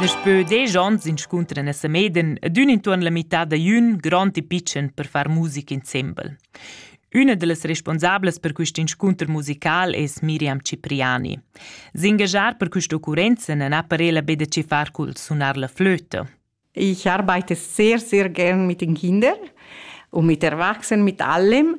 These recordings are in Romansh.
Daspö desch ons inscuntran a Sameden ed ün intuorn la mità da jün grond e pitschen per far musica insembel. Üna da las responsablas per quist inscunter musical es Miriam Cipriani. S'engagiar per questa occurrenza non ha parela be da che far cul sunar la flöte. Ich arbeite sehr, sehr gern mit den Kindern und mit Erwachsenen, mit allem,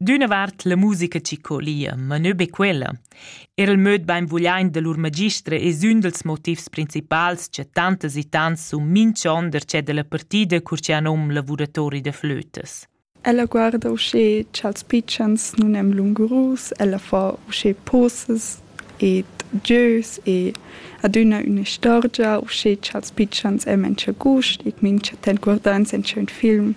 D'üna vart la musica chi colia, ma nö be quella. Er il möd bainvugliaint da lur magistra es ün dals motivs principals cha tantas e tants sun minchon darcheu da la partida cur chi han nom lavuratori da flötas. Ella guarda uschè cha'ls pitschens nun èn lungurus, ella fa uschè poses ed gieus e adüna üna istorgia uschè cha'ls pitschens èn main cha gust e mincha temp guardans in ün film.